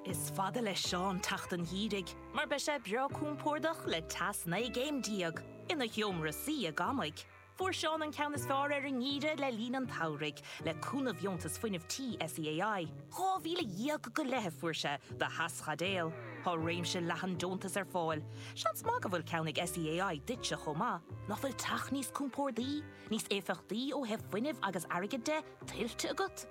Is fada leis Seán teacht an gheimhridh mar beidh sé breá compordach le teas naoi gcéim déag ina sheomra suí i gCamaigh. Fuair Seán an ceann is fearr ar an ngeimhreadh le linn an tsamhraidh le cúnamh dheontas fuinnimh tí SEAI. Dhá mhíle dhéag go leith a fuair sé do theaschaidéal. Tá réimse leathan deontas ar fáil. Seans maith go bhfuil ceann ag SEAI duitse chomh maith. Nach bhfuil teach níos compordaí, níos éifeachtaí ó thaobh fuinnimh agus airgid de tuillte agat?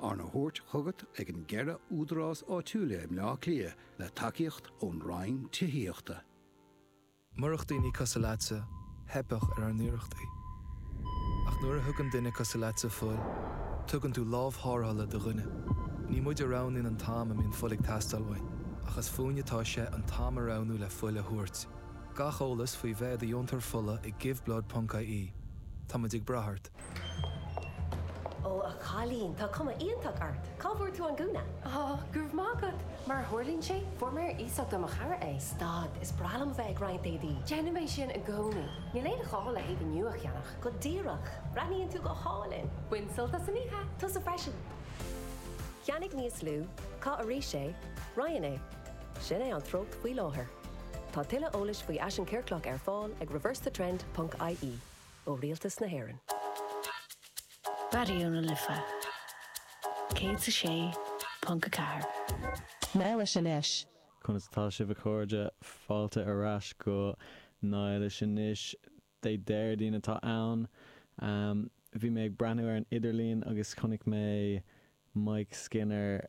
arna thabhairt chugat ag na ceithre údarás áitiúila i mBleá Cliath le tacaíocht ón Roinn Tithíochta. Murach daoine cosúil leatsa, theipfeadh ar ár n-iarrachtaí. Ach nuair a thugann duine cosúil leatsa fuil, tugann tú lámh thárrthala do dhuine. Ní muid a roghnaíonn an t-am a mbíonn fuil ag teastáil uainn, ach is fúinn atá sé an t-am a roghnú le fuil a thabhairt. Gach eolas faoi bheith i do dheontóir fola ag Give Blood ponc ie Tá muid ag brath ort. Ó, a chailín, tá cuma iontach ort. Cá bhfuair tú an gúna? Ó, go raibh maith agat. Mar a tharlaíonn sé, fuair mé ar iasacht ó mo chara é. Stad, is breá liom a bheith ag roinnt éadaí. Déanaim é sin i gcónaí. Níl aon ghá le héadaí nua a cheannach. Go díreach. Breathnaíonn tú go hálainn. Bain sult as an oíche. Tusa freisin. Ceannaigh níos lú, Caith arís é, Roinn é. Sin é an treocht faoi láthair. Tá tuilleadh eolais faoi fhaisean ciorclach ar fáil ag reversethetrend.ie. ó Rialtas na hÉireann. Raidió na Life 106.4. Nathaí Leis Anois. Conas atá sibh a chairde? Fáilte ar ais go Nathaí Leis Anois. Dé Déardaoin atá ann. Bhí mé ag breathnú ar an idirlíon agus chonaic mé Mike Skinner